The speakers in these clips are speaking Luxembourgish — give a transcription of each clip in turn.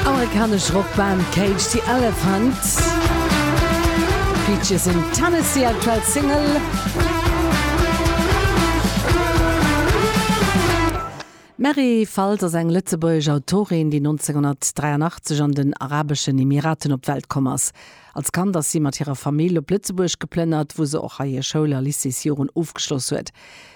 Amerikanesch Rockband Cage the Elephant Peaches in Tennessee, aktuell Single. D'Mary Faltz ass eng lëtzebuergesch Autorin, déi 1983 an den Arabeschen Emiraten op d'Welt komm ass. Als Kand ass si mat hirer Famill op Lëtzebuerg geplënnert, wou se och hei hir Schoul a Lycéesjoren ofgeschloss huet.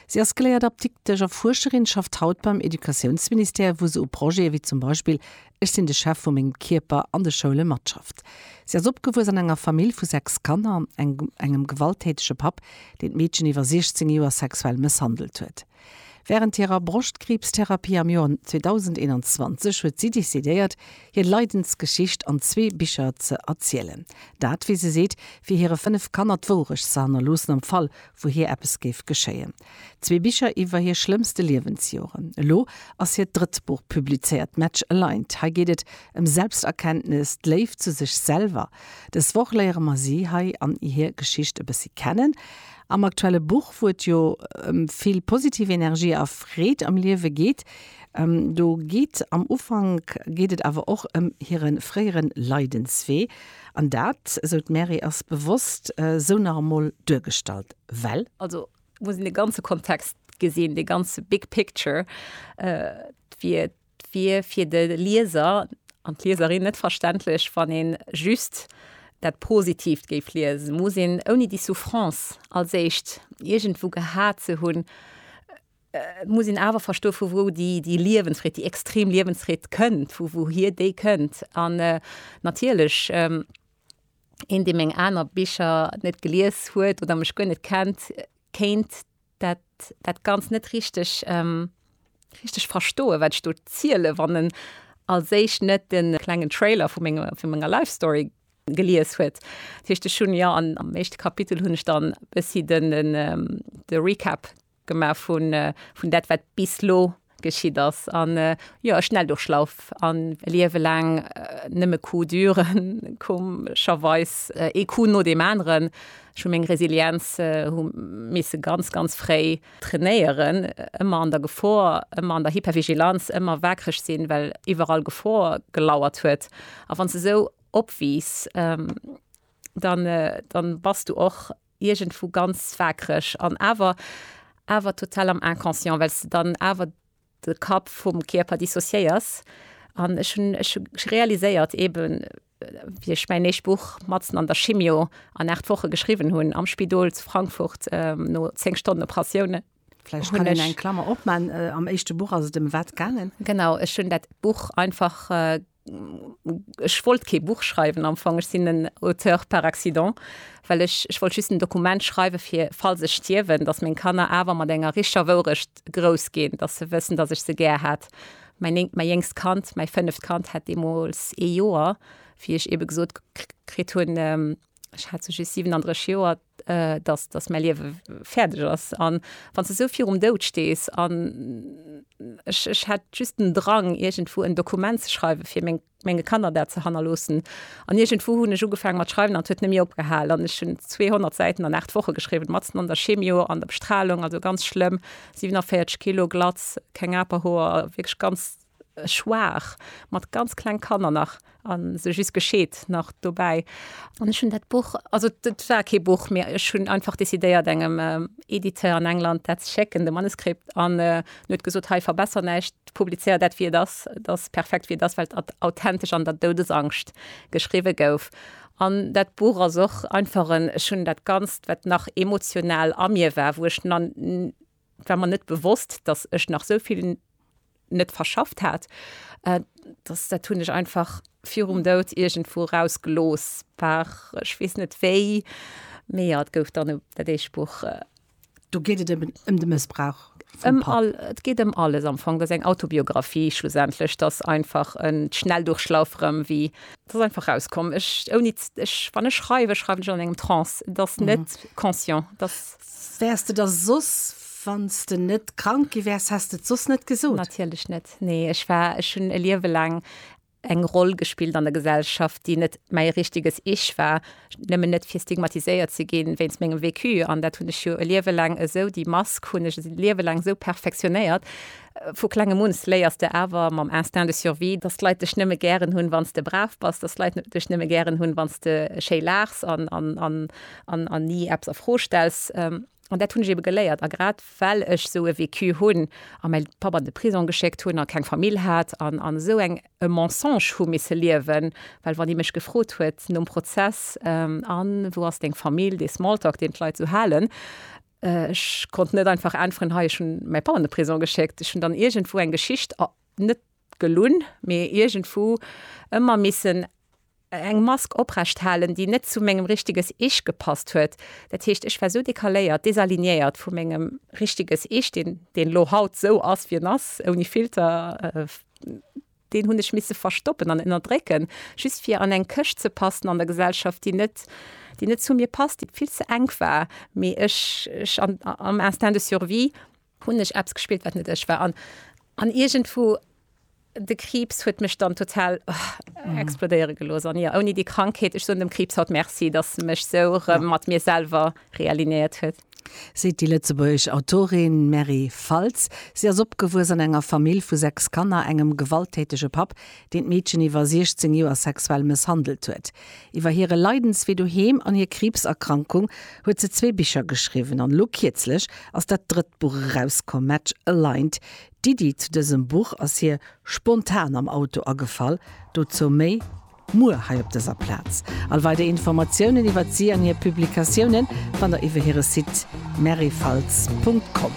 Si ass geléiert Apdiktesch a Fuerscherin, schafft haut beim Educatiounsministère, wou se u Projete wéi zum Beispill Ech sinn de Chef vu mengem Kierper an de Schoule matschafft. Si ass opgewuess an enger Famill vu sechs Kanner, engem gewalttätege Papp, deen d'Meedchen iwwer 16 Joer sexuell mësshandelt huet. Wärend hirer Broschtkriibstherapie am Joer 2021 huet si decidéiert, hir Leidensgeschicht an zwee Bicher ze erzielen. Dat, wéi se seet, fir hire fënnef Kanner d'Wourecht ze hannerloossen am Fall wou hir eppes géif geschéien. Zwee Bicher iwwer hir schlëmmste Liewensjoren. Elo ass hiert drëtt Buch publizéiert, Match Aligned. Hei geet et ëm Selbsterkenntnes, d'Léift zu sech selwer. Dës Woch léiere mer si hei an hir Geschicht e bëssi kennen. Am aktuelle Buch, wou et jo ëm vill positiv Energie a Freed am Liewe geet, do geet am Ufank geet et awer och ëm hire fréiere Leidenswee. An dat, esou d'Mary, ass bewosst esou nach emol duergestallt, well. Also muss een de ganze Kontext gesinn, de ganze big picture. Et wier fir de Lieser an d'Lieserin net verständlech, wann ee just dat Positiivt géif liesen. Muss een, ouni déi Souffrance als éischt iergendwou gehat ze hunn, Et muss een awer verstoen, vu wou déi Liewensfreed, déi extrem Liewensfreed kënnt, vu wouhier déi kënnt. An natierlech, een, dee meng aner Bicher net gelies huet oder mech guer net kennt, kéint dat dat Ganzt net richteg richteg verstoen, wat ech do zielen, wann en als éischt net de klengen Trailer vu menge vu menger Life Story gelies huet. Dat heescht, ech hunn, jo, am éischte Kapitel hunn ech dann e bëssi de Recap. Gemaach vun vun dat wat bis lo geschitt ass an jo e Schnelldurchlauf an e Liewe laang nëmme Coup dure komescherweis ee Coup no deem aneren. Ech hu meng Resilienz hu misse ganz ganz fréi trainéieren, ëmmer an der Gefor, ëmmer an der Hypervigilanz, ëmmer waakreg sinn, well iwwerall Gefor gelauert huet. A wann s de esou opwiss dann dann bass du och. iergendwou ganz waakreg an awer awer total am Inconscient, well s de dann awer de Kapp vum Kierper dissociéiers. An ech hunn ech hu realiséiert eeben, wéi ech mäin éischt Buch matzen an der Chimio an aacht Woche geschriwwen hunn, am Spidol zu Frankfurt no zéng Stonnen Operatioun, Vläicht kann een eng Klammer opman, Am éischte Buch ass et ëm wat gaangen? Genau, ech hunn dat Buch einfach Ech wollt kee Buch schreiwen am Fong. Ech sinn en Auteur par accident, well ech, ech wollt just en Dokument schreiwen, fir falls ech stierwen, datt meng Kanner awer mat enger richtger Wourecht grouss ginn, datt se wëssen, datt ech se gär hat. Mäin mäi jéngst Kand, mäi fënneft Kand hat deemools ee Joer, wéi ech ebe gesot kritt hunn, ech hat se just 37 Joer, dass dass mäi Liewe fäerdeg ass an wann s de esou virum Doud stees an ech ech hätt just den Drang iergendwou en Dokument ze schreiwe fir meng menge Kanner dat ze hannerloossen an iergendwou hunn ech ugefaange mat schreiwen an et huet net méi opgehal an ech hunn 200 Säiten an 8 Woche geschriwwen, matzen an der Chemio, an der Bestralung, also ganz schlëmm, 47 Kilo, glatz, keng Aperhoer, wierklech ganz. Schwaach, mat ganz kleng Kanner nach, a se just gescheet nach dobäi. An ech hunn dat Buch, also et war kee Buch, mä ech hunn einfach decidéiert, engem Editeur an England dat ze schécken, de Manuskript. An en huet gesot, Hei, verbesser näischt, publizéier dat, wéi et ass, et ass perfekt, wéi et ass, well et authentesch an der Doudesangscht geschriwwe gouf. An dat Buch ass och einfach en, ech hunn dat Ganzt, wat nach emotional a mir war, wou ech, et war mer net bewosst, datt ech nach esou vill net verschafft hat dass dat hunn ech einfach virum Dout irgendwo rausgelos war ech wees net wéi mé ja, gouf dann dat éischt Buch. Äh, Do geet et ëm um de Mëssbrauch. Um all, et geet ëm alles am Fong, dat eng Autobiografie schlussendlech, dass einfach en Schnelldurchlauf rëm wéi dass einfach rauskomm ech ouni ech wann ech schreiwen, schreiwen ech an engem Trance, dass net mhm. conscient dass. Wärs de da soss, wanns de net krank gi wärs, häss de et soss net gesot? Natierlech net, nee. Ech war, ech hunn e Liewe laang eng Roll gespillt an der Gesellschaft, déi net mäi richteges Ich war, nëmmen net fir stigmatiséiert ze ginn wéinst mengem Vécu. An dat hunn ech jo e Liewe laang esou, déi Mask hunn ech e Liewe laang esou perfektionéiert. Vu klengem un léiers de awer mam Instinct de survie, dass d'Leit dech nëmme gären hunn, wanns de brav bass, dass d'Leit dech nëmme gären hunn, wanns de schéi laachs an, an, an, an, an ni eppes a Fro stells. An dat hunn ech ebe geléiert. A grad well ech esou e Vécu hunn a mäi Papp an de Prisong geschéckt hunn a keng Famill hat an, an esou eng, e Mensonge hu misse liewen, well wann ee mech gefrot huet nom Prozess, A wou ass deng Famill? dee Smalltalk, deen d'Leit esou halen, ech konnt net einfach äntweren, Hei, ech hunn mäi Papp an de Prisong geschéckt. Ech hunn dann iergendwou eng Geschicht a net Gelunn, mee iergendwou ëmmer missen eng Mask oprecht halen, déi net zu mengem richteges Ich gepasst huet. Dat heescht, ech war esou décaléiert, désalignéiert vu mengem richteges Ich, deen deen lo haut esou ass, wéi en ass, ouni Filter, deen hunn ech misse verstoppen an ënnerdrécken, just fir an eng Këscht ze passen an der Gesellschaft, déi net, déi net zu mir passt, déi vill ze enk war, mee ech, ech an, am Instinct de survie, Hunn ech eppes gespillt wat net ech war an an iergendwou de Kriibs huet mech dann total explodéiere gelooss an jo ouni déi Krankheet. Ech soen dem Kriibs haut Merci, datt e mech esou erëm mat mir selwer realinéiert huet. Seet déi lëtzebuergesch Autorin Mary Faltz. Si ass opgewuess an enger Famill vu sechs Kanner, engem gewalttätege Papp, deen d'Meedchen iwwer 16 Joer sexuell mësshandelt huet. Iwwer hire Leidenswee doheem an hir Kriibserkrankung huet se zwee Bicher geschriwwen an elo kierzlech ass dat drëtt Buch erauskomm, Match Aligned. D'Iddi zu dësem Buch ass hir spontan am Auto agefall. Dozou méi muer hei op dëser Plaz. All weider Informatiounen iwwert si an hir Publikatiounen fannt der iwwer hire Site merifaltz.com.